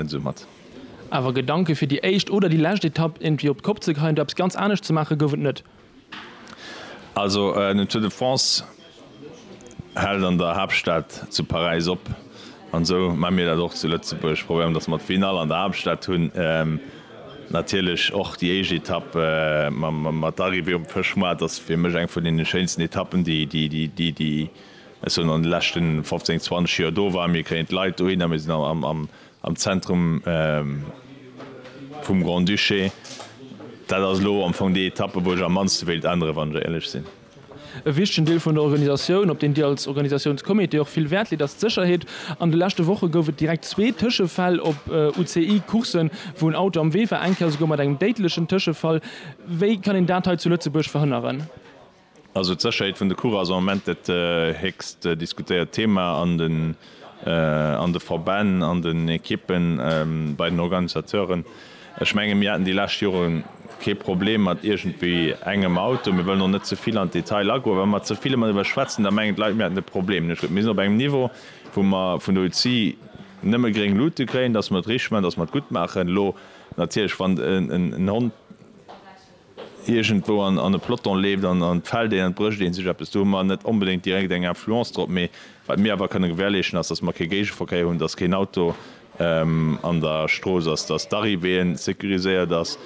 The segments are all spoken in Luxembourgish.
net esou mat. Awer Gedanke fir déi éischt oder déi lescht Etapp iergendwéi op d'Kopp ze kreien oder eppes ganz anescht ze maachen, gouf et net. Also den Tour de France hält an der Haaptstad zu Paräis op an esou maache mir dat och zu Lëtzebuerg, probéieren dass mer d'Finall an der Haaptstad hunn, natierlech och déi éischt Etapp mat der Arrivée um Fëschmoart ass fir mech eng vun deene schéinsten Etappen déi Ech hunn an de leschten 15, 20 Joer do war, mir kréien d'Leit dohin a mir sinn am Zentrum vum Grand-Duché. Dat ass elo am Fong déi Etappe, wou ech am mannste wéilt änneren, wann ech éierlech sinn. E wichtegen Deel vun der Organisatioun, op deen Dir als Organisatiounscomité och vill Wäert leet, ass d'Sécherheet. An de leschte Woche gouf et direkt zwee Tëschefäll op UCI-Courssen, wou en Auto am Wee war, eng Kéier esouguer mat engem déidlechen Tëschefall. Wéi kann een dat hei zu Lëtzebuerg verhënneren? Also d'Sécherheet vun de Course ass am Moment dat héchst diskutéiert Thema an de Verbänn, an den Ekippen, bei den Organisateuren. Ech menge mir haten déi lescht Jore kee Problem mat iergendwéi engem Auto. Mir wëllen och net ze vill an d'Detail agoen. Wa mer ze vill ëmmer driwwer schwätzen, da mengen d'Leit mir hätten e Problem. Ech gleef mir sinn op engem Niveau wou mer vun der UCI nëmme gréng Lute kréien, datt mer et richteg maachen, datt mer et gutt maachen. Elo natierlech wann en Hond. iergendwou an e Ploton leeft an d'fällt een an et brécht ee sech eppes, do hu mer net onbedéngt direkt eng Influence drop. Mee wat mir awer kënne gewährleeschten ass, datt mer kee Géigeverkéier hunn, datt keen Auto an der Strooss ass, datt d'Arrivée sécuriséiert ass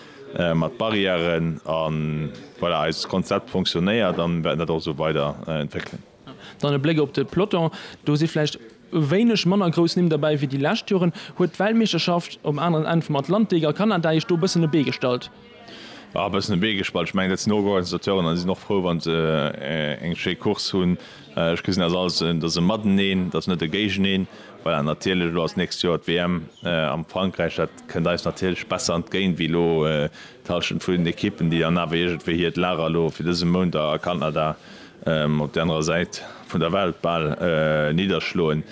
mat Barrièren a voilà eist Konzept fonctionnéiert an wäerten dat och esou weider entwéckelen. Dann e Bléck op de Peloton, do si vläicht e wéineg manner grouss Nimm derbäi wéi déi lescht Joren. Huet d'Weltmeeschterschaft um aneren Enn vum Atlantik a Kanada Iech do e bëssen e Bee gestallt? E bëssen e Bee gestallt, ech mengen dat sinn Organisateuren an déi sinn och frou wann se eng schéi Course hunn. Ech gesinn dat als en, dat ass e Mateneen, dat ass net e Géigeneen. Voilà, natierlech elo ass d'nächst Joer d'WM am Frankräich, dat kënnt eis natierlech besser entgéint wéi elo d'Hallschent vun den Ekippen, déi dann awer iergendwéi hiert Lager elo fir dëse Mount a Kanada op der anerer Säit vun der Welt bal nidderschloen,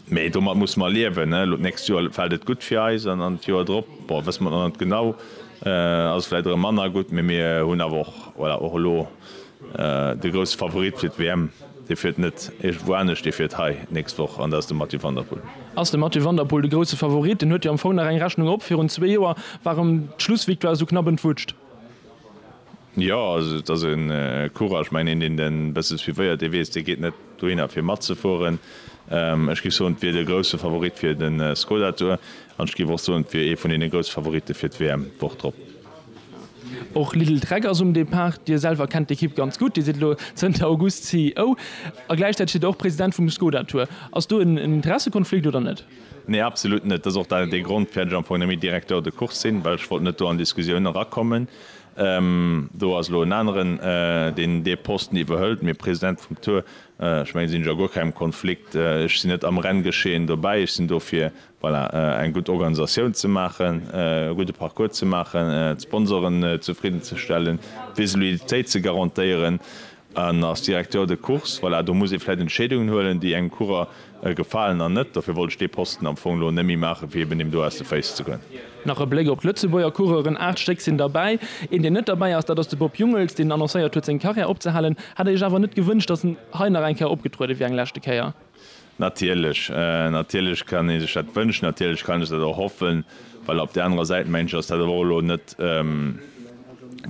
mä domat musse mer liewen. Elo d'nächst Joer fält et gutt fir eis an an d'Joer drop, bon, wësse mer nach net genau, ass et vläicht erëm manner gutt, mä mir hunn awer och, voilà, och elo de grousse Favorit fir d'WM, dee fiert net iergendwou anescht, dee fiert hei d'nächst Woch an dat ass de Mathieu van der Poel. Ass de Mathieu van der Poel de grousse Favorit? En huet jo am Fong nach eng Rechnung op, virun zwee Joer war erëm d'Schlussvictoire esou knapp entwutscht. Jo, also et ass e Courage. Mä een, deen e bësse suivéiert, dee weess, dee geet net dohinner, fir matzefueren. Ech géif soen, et wier de grousse Favorit fir de Skoda Tour. An ech géif och soen, et wier ee vun deene grousse Favoritte fir d'WM d'Woch drop. Och Lidl Trek ass um Depart. Dir selwer kennt d'Ekipp ganz gutt. Dir sidd elo zënter August CEO a gläichzäiteg sidd Der och President vum Skoda Tour. Ass do en Interessekonflikt oder net? Nee, absolut net. Dat ass och dee Grond, firwat ech am Fong net méi Directeur de course sinn, well ech wollt net do an Diskussioun erakommen. Do ass elo en aneren, deen dee Posten iwwerhëlt. Mee President vum Tour, ech mengen, sinn ech a guer kengem Konflikt. Ech sinn net am Renngeschehen dobäi. Ech sinn do fir, voilà, eng gutt Organisatioun ze maachen, e gudde Parcours ze maachen, d'Sponsoren zefridden ze stellen, d'Visibilitéit ze garantéieren. En ass Directeur de course. Voilà, do muss ee vläicht Entscheedungen huelen, déi engem Coureur gefalen an net. Dofir wollt ech dee Posten am Fong elo némmi maachen, fir eben him do aus de Féiss ze goen. Nach e Bléck op d'Lëtzebuerger Coureuren, Aacht Stéck sinn derbäi. Een, deen net derbäi ass, dat ass de Bob Jungels, deen annoncéiert huet, seng Carrière opzehalen. Hätt Der Iech awer net gewënscht, datt en hei nach eng Kéier opgetrueden wier, eng leschte Kéier? Natierlech, natierlech kann ee sech dat wënschen, natierlech kann ech dat och hoffen, well op där anerer Säit, mengen ech, ass dat awer och elo net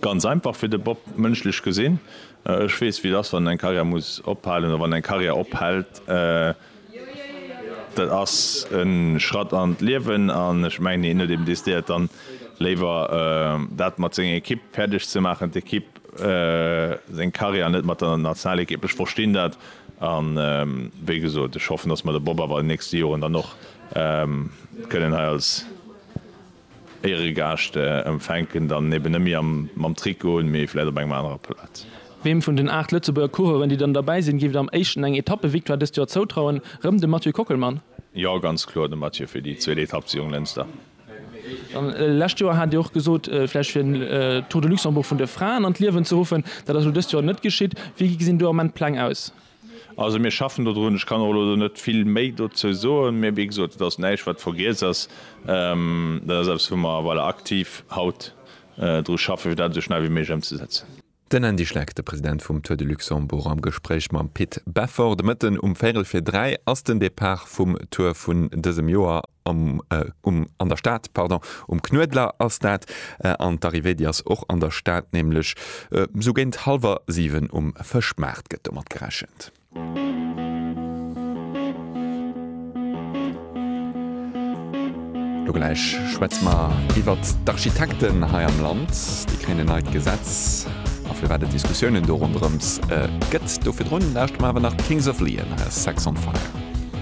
ganz einfach fir de Bob, mënschlech gesinn. Ech weess, wéi et ass, wann eng Karriär muss ophalen oder wann eng Karriär ophält. Dat ass e Schratt an d'Liewen an ech mengen, hien huet eben decidéiert, dann léiwer dat mat senger Ekipp fäerdeg ze maachen, d'Ekipp seng Karriär net mat der Nationalequipe. Ech verstinn dat an wéi gesot, ech hoffen, datt mer de Bob awer an den nächste Joren dann och kënnen hei als Éieregaascht empfänken, dann eben net méi mam Trikot, mee vläicht op engem anerer Plaz. Weem vun den 8 Lëtzebuerger Coureuren, déi dann derbäi sinn, géift Dir am éischten eng Etappe-Victoire dëst Joer zoutrauen? Rëm de Mathieu Kockelmann? Jo, ganz kloer de Mathieu fir déi zweet Etapp zu Jonglënster. Lescht Joer hat Dir och gesot, vläicht fir en Tour de Luxembourg vun de Fraen an d'Liewen ze ruffen. Dat ass elo dëst Joer net geschitt. Wéi gesinn do am Moment d'Pläng aus? Also mir schaffen dodrun. Ech kann och elo do net vill méi dozou soen. Mee wéi gesot, et ass näischt, wat vergiess ass. Dat ass eppes, wou mer, voilà, aktiv haut dru schaffen, fir dat esou schnell wéi méiglech ëmzesetzen. Den Andy Schleck, de President vum Tour de Luxembourg am Gespréich mam Pit Beffort. De Mëtten um véierel fir dräi ass den Depart vum Tour vun dësem Joer. Am, um, an der Stad, pardon, um Knuedler ass dat. An d'Arrivée, déi ass och an der Stad, nämlech esou géint hallwer siwen um Fëschmaart gëtt domat gerechent. Lo gläich schwätze mer iwwert d'Architekten hei am Land. Déi kréien en neit Gesetz a firwat et Diskussiounen do ronderëms gëtt. Do virdrun lauschte mer awer nach Kings of Leon a Sex on Fire.